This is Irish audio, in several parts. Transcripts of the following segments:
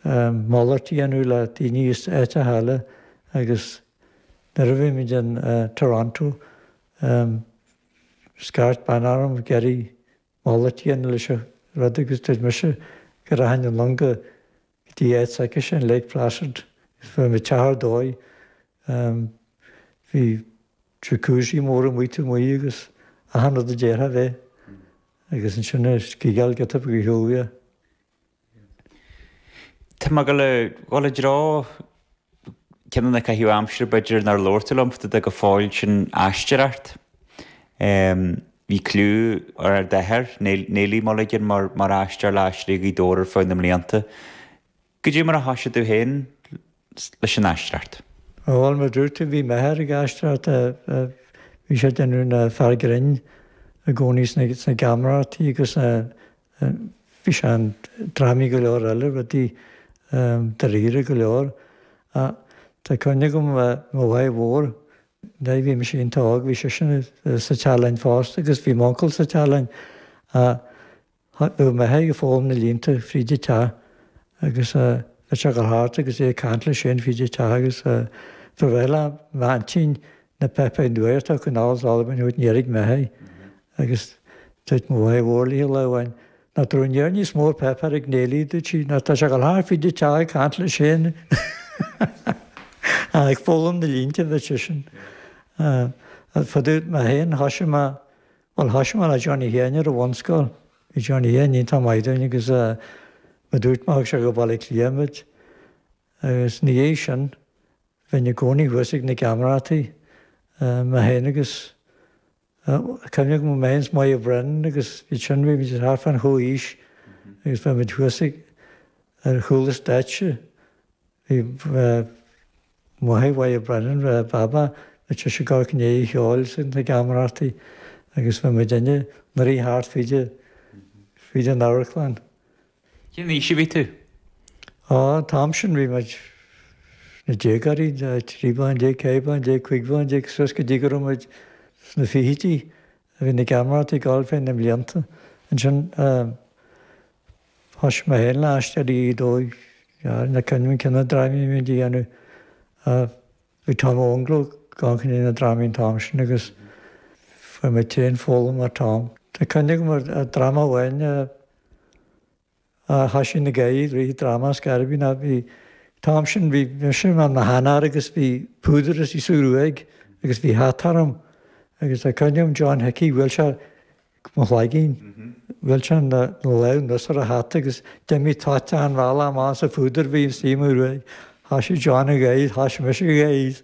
malairt tí a dhéanamh le daoine as áiteacha eile agus nuair a bhí muid in Toronto scairt bean orm ag iarraidh malairt tí a dhéanamh leis an rud agus dúirt mise go rachainn anonn go dtí áit s'aicise in Lake Placid, agus fuair mé teach ar dóigh. Bhí Jacuzzi mór amuigh taobh amuigh agus achan rud a d'iarrfá a bheith agus ansin ag sciáil geata go Heugea. Tá mé ag gabháil i dtreo ceann de na caitheamh aimsire b'fhéidir nár labhair tú liom fá dtaobh de go fóill sin aisteoireacht. Bhí cliú ar ar d'athair, Neilí Mulligan mar aisteoir le hAisteoirí Ghaoth Dobhair ar feadh na mblianta. Goidé mar a thoisigh tú féin leis an aisteoireacht. Bhuel mar a dúirt tú bhí m'athair ag aisteoireacht. Bhí sé ag déanamh an fear grinn i gcónaí sna geamaireachtaí agus bhí sé in drámaí go leor eile, rudaí dáiríre go leor. Tá cuimhne agam mo mháthair mhór, nuair a bhí mise iontach óg, bhí sise sa teach linn fosta agus bhí m'uncail sa teach linn. Thaitneodh mé aige foghlaim na línte fríd a teach agus bheadh sé go hard agus é ag caint leis féin fríd a teach agus ba bhreá liom m'aintín na bheith ag nuair atá an canal is Albain uait ní airigh mé é agus dúirt mo mháe mhór liath lá amháin nach raibh near níos mó ar pheip ar a gnéillí dúirt sí ná tá sé go hard fríd a teach ag caint leis féin ach ag foghlaim na línte bheadh sé sin fadúd mé féin thoisigh mé Bhuel thoisigh mé le Johnny Sheáin ar an bhunscoil. Bhí Johnny Sheáin iontach maith dúinn agus mar a dúirt mé thug sé go Baile Átha Cliath muid agus ina dhiaidh sin bheinn i gcónaí thuas ag na geamaireachtaí mé féin agus cuimhne agam mé féin is Moya Brennan agus iad sin bhí muid thart fán chomhaois agus bheadh muid thuas ag ar chúl an stáitse. Bhí. máthair Mhoya Brennan, Baba, bheadh sise i gcónaí ag ceol sna geamaireachtaí agus bheadh muidinne inár rith thart fríd an amharclann. Cén aois a bhí tú? Á, an t-am sin bhí muid sna déagóirí, trí bliana déag, ceithre bliana déag, cúig bliana déag, suas go dtí go raibh muid sna fichidí. Bhí na geamaireachtaí ag gabháil ar feadh na mblianta ansin. Thosaigh mé féin le hAisteoirí Ghaoth Dobhair, ní cuimhin cé na drámaí a bhí muid a dhéanamh. Bhí Tom Mac Fhionnlaoich i gcionn na ndrámaí an t-am sin agus fuair mé tréan foghlaim ó Tom. Tá cuimhne agam ar dhráma amháin a thoisigh ina gcaiaigh, Ríthe, dráma as Gairibín. An t-am sin bhí mise i mo sheanfhear agus bhí púdar insa ghruaig agus bhí hata orm agus tá cuimhne agam John Hickey, bhuail sé mo chloigeann. Bhuail sé lán nós ar a hata agus d'imigh toit an bhalla amach sa phúdar a bhí ina suí mar uaigh. Thoisigh John ag gáire, thoisigh mise ag gáire.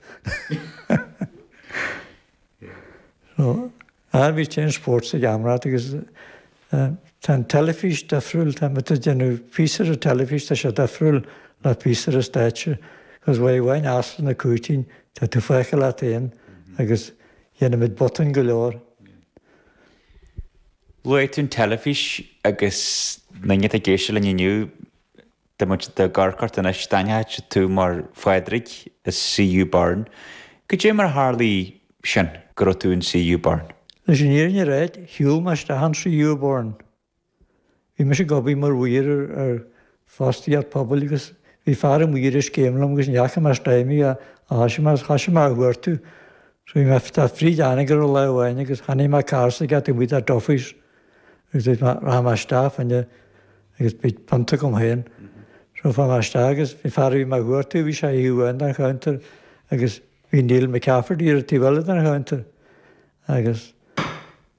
Bhí Ten Sports ag am rath agus tá an teilifís difriúil, tá muid ag déanamh píosa do teilifís, tá sé difriúil le píosa do stáitse agus uair amháin Áislann na Cúitín, tá tú fágtha leat féin agus dhéanaimis botúin go leor. Luaigh tú an teilifís agus na daoine atá ag éisteacht linn inniu, tá muid do do chur ort anois, d'aithneochadh tú mar Phádraig i CU Burn. Goidé mar a tharla sin go raibh tú in CU Burn? Leis an fhírinne a ráidht, shiúl mé isteach in CU Burn Bhí mise ag obair mar mhaor ar fostaíocht pobail agus bhí fear an mhaoir ag scéim liom agus ní fhaca mé stóimí a thoisigh mé agus thoisigh mé a chuartú. So bhí mé fríd Anagaire lá amháin agus chonaic mé carr taobh amuigh do Duffy's agus dúirt mé rachaidh mé isteach ann agus bhí punt agam féin. So chuaigh mé isteach agus bhí fear a bhí mé a chuartú, bhí sé ar thaobh amháin den chounter agus bhí Neil McCafferty ar an taobh eile den chounter agus.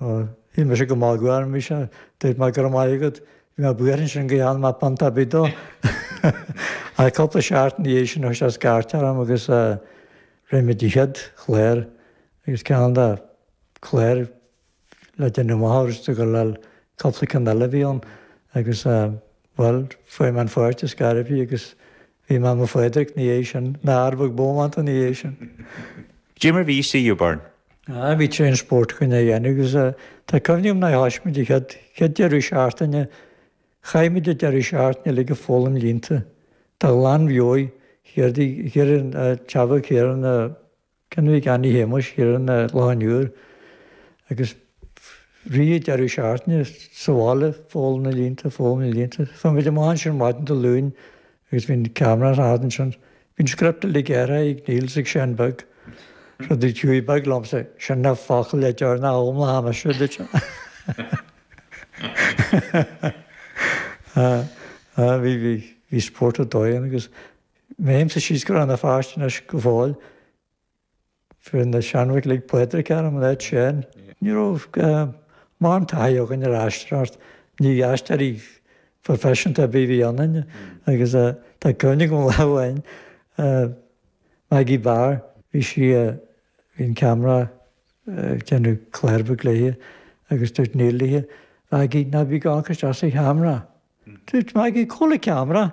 Ó, tá mise go maith, go raibh maith, dúirt mé, go raibh maith agat, bhí mé buartha ansin go ndéanfadh mé punt ar bith dó. Ach cúpla seachtain ina dhiaidh sin chuir sé scairt orm agus rinne muid an chéad chlár agus ceann de cláir le déanamh amach ortsa gur le cúpla ceann eile a bhí ann agus Bhuel, fuair mé an pháirt is gairbhí agus bhí mé i mo Phádraic ina dhiaidh sin, Pádraig bómánta ina dhiaidh sin. Goidé mar a bhí CU Burn? Aye, bhí tréan spóirt againn á dhéanamh agus eh, tá cuimhne agam nuair a thoisigh muid an chéad, chéad deireadh seachtaine, chaith muid an deireadh seachtaine uilig ag foghlaim línte, de ghlanmheabhair, chéard í, chéard é an, eh, Teamhair Céireann, eh, Cén uair, Annie Shéamuis Sheeran a lán uair agus rith an deireadh seachtaine sa bhaile, foghlaim na línte, foghlaim na línte. Tá muid amuigh ansin ar maidin Dé Luain agus bhíodh camera as a theacht ansin. Bhíodh script uilig gearrtha ag Neil is ag Seán beag, rud a chuaigh beag liom sa Sean ná focal le deoir ná am le ham, istigh duit. Bhí spórt ar dóigh ann agus Sílimse go bhfuil na páistí anois go fóill. Fuair na seanbhuachaillí Pádraig air an leid sin. Ní raibh mórán taithí againn ar aisteoireacht, ní aisteoirí proifisiúnta ar bith a bhí ionainn, agus tá cuimhne agam lá amháin, Maggie Barr, bhí sí, bhí an ceamara ag déanamh cláir bhig léithe agus dúirt Neil léithe, Mhaggie, ná bí ag amharc isteach sa cheamara. Dúirt mé ag cúl an cheamara.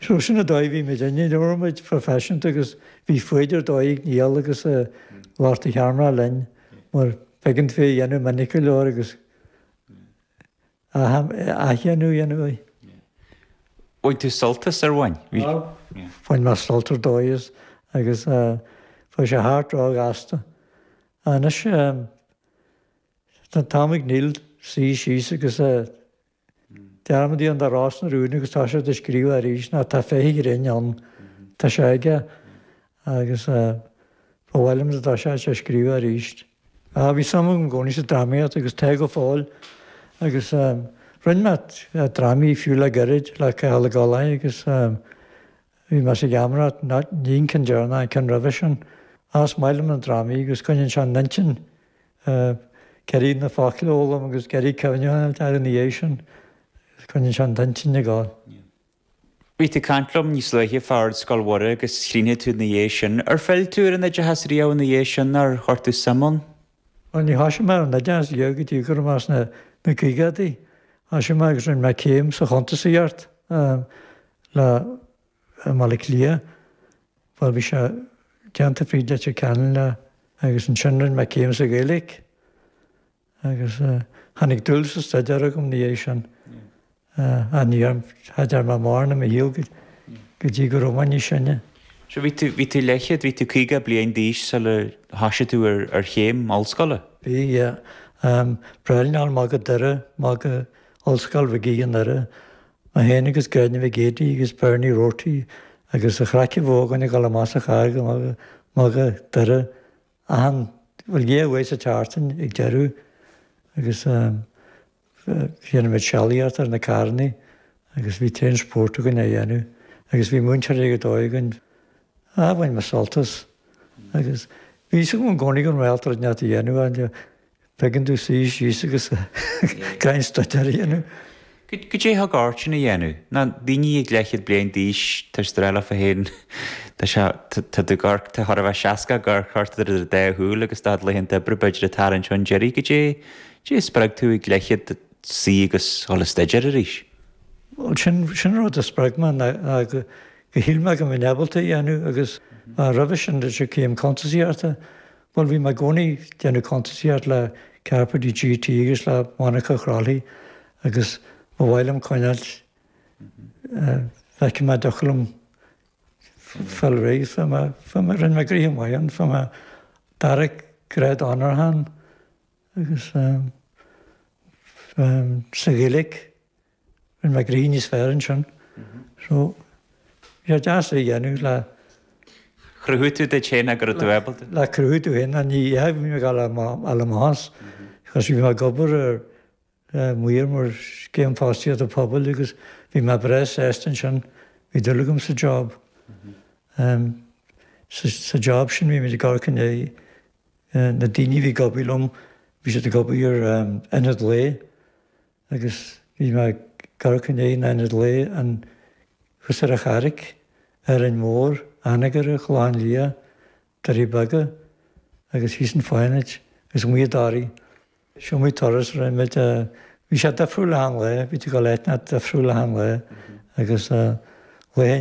So sin an dóigh a bhí muid inne, ní raibh muid professionanta agus bhí foighid ar dóigh ag Niall agus ag lucht an cheamara linn mar b'éigean dúinn é a dhéanamh minic go leor agus athdhéanamh a dhéanamh air. Bhain tú sult as ar bhain? Bhain mé sult ar dóigh as agus bhí sé thart ró ghasta. Anois Sna Támaigh Neill, suí síos agus dearmad déan de rás na rúin agus tá siad ag scríobh arís ná tá féith ghrinn ann. Tá sé aige agus ba mhaith liom dá dtosódh sé scríobh arís. Bhí suim agam i gcónaí sa drámaíocht agus tá go fóill agus rinne mé drámaí fiú le gairid le Cathal Ó Gallchóir agus bhí mé sa gheamaireacht ní an ceann deireanach an ceann roimhe sin. Ach is maith liom na drámaí agus coinníonn sé an intinn ag iarraidh na focail a fhoghlaim agus ag iarraidh cuimhneamh orthu ina dhiaidh sin, agus coinníonn sé an intinn ag gabháil. Bhí tú ag caint liom níos luaithe fá Ardscoil Mhuire agus chríochnaigh tú ina dhiaidh sin. Ar phill tú ar an oideachas riamh ina dhiaidh sin, ar chuir tú suim ann? Bhuel, níor thoisigh mé ar an oideachas go dtí go raibh mé sna caogadaí. Thoisigh mé agus rinne mé céim sa chuntasaíocht le. i mBaile Átha Cliath, mar bhí sé déanta fríd Leitir Ceanainn le. agus ansin rinne mé céim sa Ghaeilge agus tháinig dúil sa staidéar agam ina dhiaidh sin. Ach ní dhearn, cha dearn mé mórán i mo shaol go dtí go raibh mé níos sine. So bhí tú, bhí tú leathchéad, bhí tú caoga bliain d'aois sula thoisigh tú ar, ar chéim ollscoile? Bhí, yeah. B'éigean domh ghabháil go Doire, ghabháil go Ollscoil Mhig Aoidh i nDoire mé féin agus Gráinne Mhic Géidigh agus Bernie Roarty agus a chraiceann bhógáin ag dul amach sa charraig ag magadh Doire achan, bhuel, dhá oíche sa tseachtain ag deireadh agus dhéanadh muid sealaíocht ar na carrannaí agus bhí tréan spóirt againn a dhéanamh agus bhí múinteoir ar dóigh againn bhain mé sult as agus bhí sé i gcónaí ag iarraidh rud inteacht a dhéanamh an Thigeann tú suí síos agus staidéar a dhéanamh. Goidé thug ort sin a dhéanamh? Na daoine ag leathchéad bliain d'aois, tá siad ag rá leofa féin, Tá sé, tá do, tá chóir a bheith seasca ag amharc ort idir do dá shúil agus tá do chuid laethanta oibre b'fhéidir ag tarraingt chun deiridh, goidé a spreag tú ag leathchéad suí agus dhul a staidéar arís? Bhuel, sin, sin an rud a spreag mé, ná go shíl mé go mbeinn ábalta a dhéanamh agus roimhe sin, de, céim cuntasaíochta, Bhuel, bhí mé i gcónaí ag déanamh cuntasaíocht le Carpentier GT agus le Monica Crowley agus ba mhaith liom coinneáil, léithe, ba doiligh liom fáil réidh, fuair mé, fuair mé, rinne mé gnoithe maith ann, fuair mé dara grád onóracha ann agus sa Ghaeilge. Rinne mé gnoithe níos fearr ansin. So bhí sé deas é a dhéanamh le. Chruthaigh tú duit féin go raibh tú ábalta duit. Le cruthú duit féin, ná ní dhéanfaidh mé dhá lá a la más. 'Cause bhí mé ag obair ar maor mar scéim fostaíochta pobail agus bhí mé breá sásta ansin. Bhí dúil agam sa job. Sa job sin bhí mé ag amharc i ndiaidh na daoine a bhí ag obair liom, bhí siad ag obair ar ionad lae. agus bhí mé ag amharc i ndiaidh na n-ionad lae ann, thuas ar an Charraig, Árainn Mhór, Anagaire, Clochán Liath, Doirí Beaga agus thíos an Fánaid agus amuigh i dToraí. Seo muid turas raibh muid a. Bhí sé difriúil achan lá, bhí tú ag obair le daoine difriúil achan lá agus le daoine